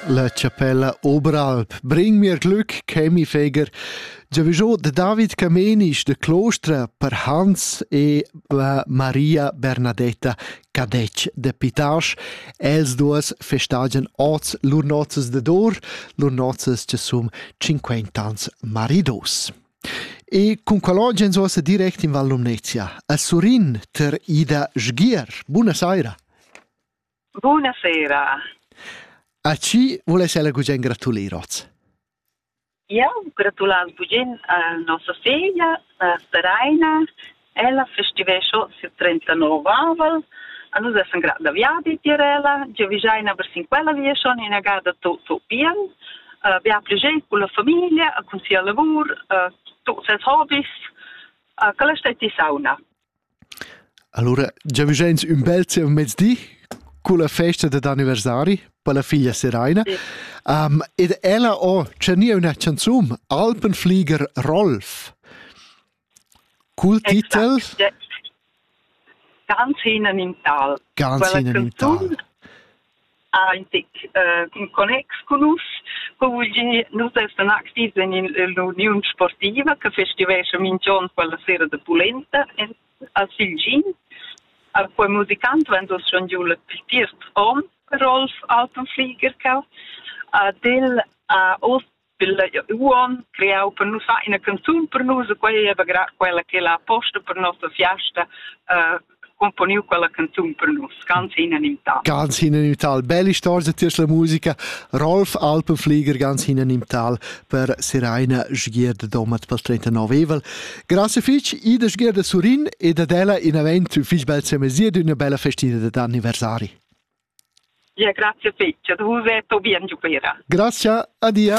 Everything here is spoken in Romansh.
La chapella Oberalp bring mir Glück, Chemi Feger. Giavigio de David Camenisch de Clostra per Hans e la Maria Bernadetta Cadec de Pitasch, els duas festagen oz lur nozzes de dor, lur nozzes che sum 50 ans maridos. E cun qualogens ossa direct in Val Lumnezia, a Surin ter Ida Sgier. Buona saira! Bunasera. A chi vuless ella gugent gratulir oz? Eu gratulaz gugent a nossa feglia, a Seraina. Ella festivescho ses 39aval. A nus essan grat da viadi tier ella. Giavischeina per sin quella via schon inagada to, to pian. Uh, bia pli gest con la famiglia, con sia lavur, uh, tuts ses hobbies. Uh, quella stai ti sauna. Allura giavüschains ün bel zievmezdi culla festa dad anniversari per la figlia Seraina. Um, ed ella ho tschernìa üna chanzun, Alpenflieger Rolf. Cul titel Ganz hinein in Tal. Ganz hinein in Tal. ha in tec uh, in connex con nus. Co vul dir, nus essan activs en l'Uniun Sportiva che festivescha minch'on quella sera de pulenta a Silgin. A quei musicant vegn dus schon giu la tiert om Rolf Altenflieger ca. Ad el ha oz Pilla uon creau per nus fa ina canzun per nus e quei ei quella che la posta per nossa fiasta uh, componiu quella canzun per nus, ganz hinanimtal. Ganz hinanimtal, belle storia tiers la musica, Rolf Alpenflieger ganz hinanimtal per Seraina Sgierda Domat per 39 evel. Grazie fich Ida Sgierda Surin ed ad ella in avent fich bel semesir d'una bella festina d'anniversari. Ia grazia fetg ad vus e po bien giuvenira. Grazia, adia.